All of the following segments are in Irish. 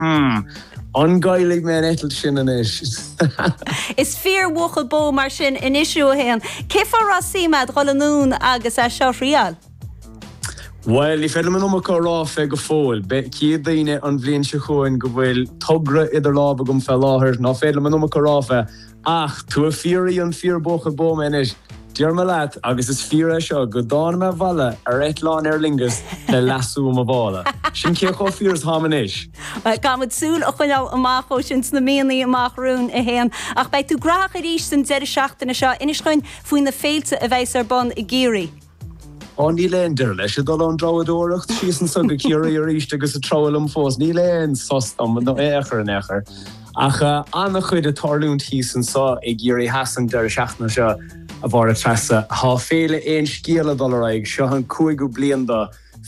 An gcaillfidh mé an eitilt sin anois? Is fíor bhuachaill bó mar sin anois thú a Shéaghain. Cén fáth a raibh suim agat dhul anonn agus é seo a thriáil? Bhuel, ní féidir liom an iomarca a rá fé go fóill. Beidh fhios ag daoine an bhliain seo chugainn go bhfuil togra idir lámha agam fé láthair. Ná féidir liom an iomarca a rá fé. Ach tú ag fiafraí an fíor buachaill bó mé anois. Déarfaidh mé leat, agus is fíor é seo, go dtáinig mé abhaile ar eitleán Aer Lingus le lasso i mo mhála. Sin cé chomh fíor is táim anois. Caithfidh muid súil a choinneáil amach dó sin sna míonna amach romhainn a Shéaghain. Ach beidh tú graitheach arís an deireadh seachtaine seo, inis dhúinn, faoi na féilte a bheas ar bun i gCiarraí. Ó níl aon deireadh leis, ag dul ón dtreabhdóireacht síos anso go Ciarraí aríst agus ag treabhadh liom fós. Níl aon sos dom in aon chor in aon chor. Ach ana-chuid ag tarlúint thíos anso i gCiarraí Theas an deireadh seachtaine seo, a Mháire Treasa. Tá Féile aon Scéal ag dul ar aghaidh, seo an cúigiú bliain do.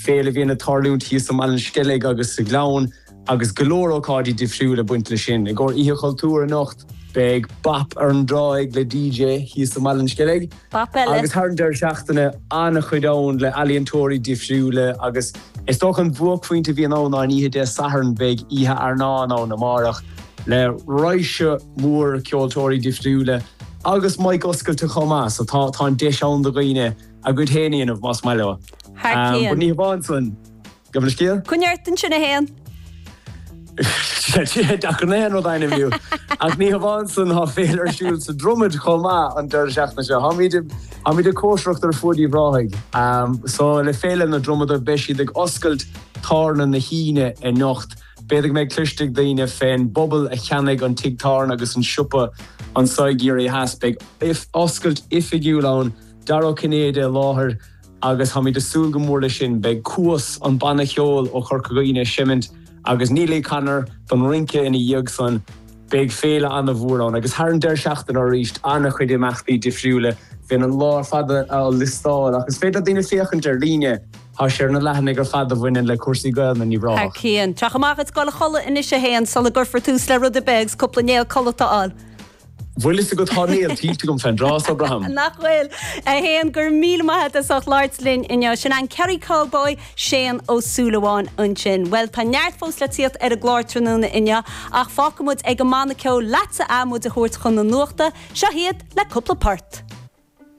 féile a bhíonn ag tarlúint thíos i mBaile an Sceilg agus sa Ghleann agus go leor ócáidí difriúla ag baint leis sin. I gcomhair Oíche Chultúir anocht beidh Bap ar an dTráigh le DJ thíos i mBaile an Sceilg Bap eile! Agus thar an deireadh seachtaine an-chuid ann le ealaíontóirí difriúla agus is dócha an bhuaicphointe a bhíonn ann ná an oíche Dé Sathairn, beidh Oíche Airneáin ann amárach le raidhse mór ceoltóirí difriúla agus mic oscailte chomh maith so tá an deis ann do dhaoine A gcuid féin a dhéanamh, más maith leo. Thar cionn. But ní hamháin san. Gabh mo leithscéal. Coinnigh ort ansin a Shéaghain. Deacair na haon rud a ainmniú inniu. Ach ní hamháin san, tá féile ar siúl sa Dromad chomh maith an deireadh seachtaine seo. Táimid i, táimid ag cóisireacht ar fuaid Uíbh Ráthaigh. So le Féile na Dromoda beidh siad ag oscailt tábhairne na hUíne anocht. B'fhéidir go mbeidh cloiste ag daoine fén bpobal a cheannaigh an tigh tábhairne agus an siopa anso i gCiarraí Theas. Beidh oscailt oifigiúil ann. Dara Ó Cinnéide i láthair agus táimid ag súil go mór leis sin. Beidh Cuas, an banna cheoil ó Chorca Dhuibhne ag seimint agus Neily Connor don rince ina dhiaidh san. Beidh féile ana mhór ann agus thar an deireadh seachtaine arís ana chuid imeachtaí difriúla. Bheinn an lá ar fad á liostáil ach is féidir le daoine féachaint ar líne, tá sé ar na leathanaigh ar fad a bhaineann le cúrsaí Gaelainne in Uíbh Ráthach. Cian. Teach amach is goil a chodladh anois a Shéaghain sula gcuirfear tús le rud ar bith agus cúpla néal codlata a fháil. Bhfuil fhios agat, tá néal tuillte agam fén dtráth so, braithim. Nach bhfuil? A Shéaghain, go raibh míle maith agat as ucht labhairt linn inniu. Sin é an Kerry Cowboy, Séaghan Ó Súilleabháin ansin. Bhuel, tá neart fós le tíocht ar an gclár tráthnóna inniu ach fágfaidh muid ag an mbanna ceoil leatsa ath muid a thabhairt chun na nuachta. Seo hiad le cúpla port.